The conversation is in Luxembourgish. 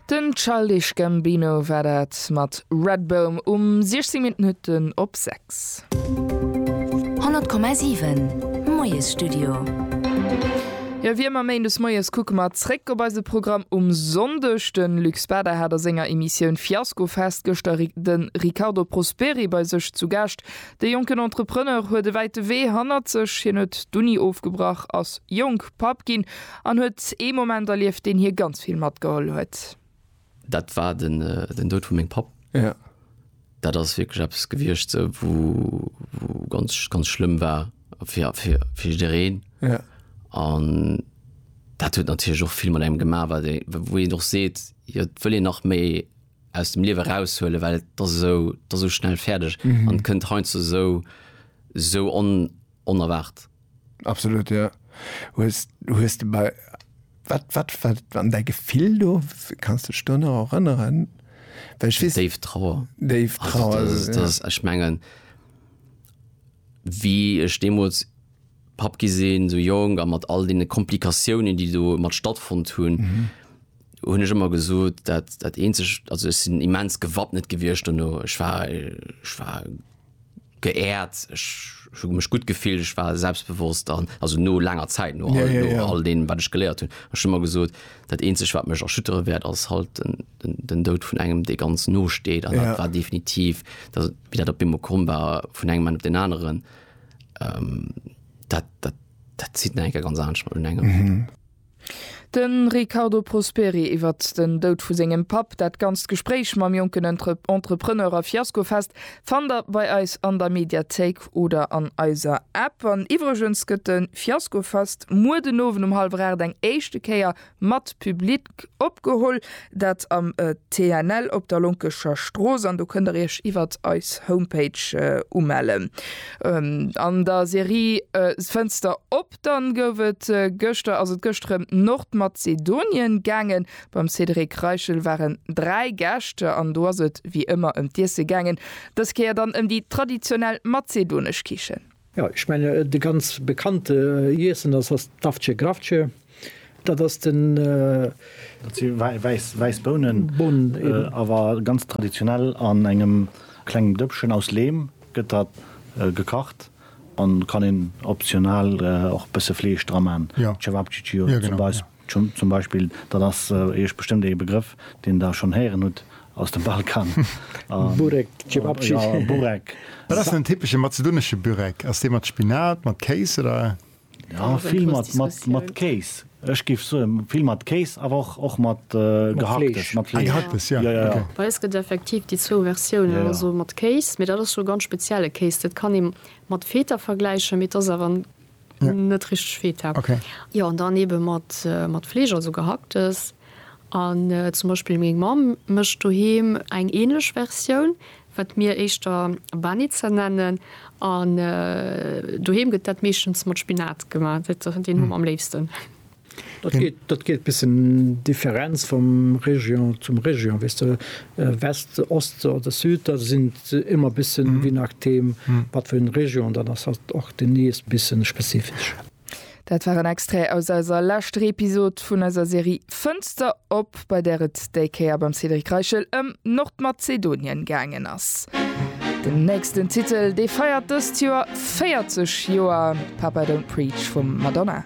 Den Childish Gambino war dat mat Redbone um 16 Minutten op 6. 100,7 Moiesstudio. Jo, wéi ëmmer méindes moies kucke mer zréck op eise Programm um Sonndeg. De Luc Bader hat a senger Emissioun Fiascofest gëschter de Riccardo Prosperi bei sech zu Gaascht. De jonken Entrepreneur huet e wäite Wee hannert sech, hien huet d'Uni ofgebrach, ass jonk Papp ginn An huet ee Moment erlieft, deen hie ganz vill matgeholl huet. Dat war den Doud vu mengem Papp. Dat ass wierklech eppes gewiescht, sou, wou ganz, ganz schlëmm war fir jiddereen. An dat huet natierlech och vill mat engem gemaach, wat ee, wou een och seet, jo, et wëll een nach méi aus dem Liewe eraushuelen, well et ass esou, et ass esou schnell fäerdeg an kënnt heiansdo esou, esou on, onerwaart. Absolut jo. Hues hues de bei wat wat wat an däi Gefill do? Kanns de dech do nach erënneren? Well ech weess. Déif Trauer. Déif Trauer. Also dat dat ass ech mengen wéi ech deemools Papp gi sinn, esou jonk a mat all deene Komplikatiounen déi do mat stattfonnt hunn, hunn ech ëmmer gesot dat dat eenzegt, also ech sinn immens gewappnet gewiescht dono. Ech war ech war. geehrt, ech hu mech gutt gefillt, ech war selbstbewosst an also no laanger Zäit, no all no all deem wat ech geléiert hunn. Ech hu mer gesot, dat eenzegt wat mech erschüttere wäert ass halt den den den Doud vun engem dee ganz no steet an dat war definitiv dat wéi dat op eemol komm war vun engem Moment op deen aneren. Dat dat dat zitt nach eng Kéier ganz anescht mat un engem. De Riccardo Prosperi iwwert den Doud vu sengem Papp. Dat ganzt Gespréich mam jonken Entrepreneur a Fiasko-Fest fannt der bei eis an der Mediathéik oder an eiser App. An iwwregens gëtt de Fiasko-Fest muer den Owend um hallwer 8 eng éischte Kéier mat Public opgeholl. Dat am TNL op der Lonkescher Strooss an do kënnt der iech iwwert eis Homepage umellen. An der Serie Fënster op! Dann gouf et gëschter, ass et gëschter ëm Nordmazedonien gaangen. Beim Cédric Reichel waren 3 Gäscht an do ass et wéi ëmmer ëm d'Iesse gaangen. Dës Kéier dann ëm déi traditionell mazedonesch Kichen. Jo, ech menge de ganz bekannte Iessen ass ass d'Avce Gravce. Dat ass den. Dat si wäiss, wäiss Bounen. Bounen, eben. Awer ganz traditionell an engem klengem Dëppchen aus Leem gëtt dat gekacht. An kann een optional och bësse Fleesch dra maan, Cevapcici zum Beispill, dat ass iech bestëmmt ee Begrëff deen der schonn héieren hutt aus dem Balkan. Burek, Cevapcici. Burek. Wat ass den typesche mazedonesche Burek? Ass dee mat Spinat, mat Kéis oder? Ja, vill mat Kéis. Ech géif soen, vill mat Kéis, awer och mat Gehacktes. Mat Fleesch, jo, jo, jo. Bei eis gëtt et effektiv déi zwou Versiounen, also mat Kéis, mee dat ass jo ganz spezielle Kéis. Dat kann ee mat Feta vergläichen, mee et ass awer net richteg Feta. Jo, an dann eebe mat Fleesch, also Gehacktes. An zum Beispill meng Mamm mécht doheem eng änlech Versioun, wat mir éischter Banitzer nennen, an doheem gëtt dat meeschtens mat Spinat gemaach, deen hu mer am léifsten. Dat geet bëssen Differenz vum Région zum Région, weess de, West, Ost oder Süd, da sinn et ëmmer bëssen, je nachdeem wat fir eng Région dat ass, och déi nees bëssen spezifesch. Dat war en Extrait aus eiser leschter Episod vun eiser Serie Fënster op, bei där et déi Kéier beim Cédric Reichel ëm Nordmazedonien gaangen ass. Den nächsten Titel, dee feiert dëst Joer 40 Joer, Papa Don't Preach vum Madonna.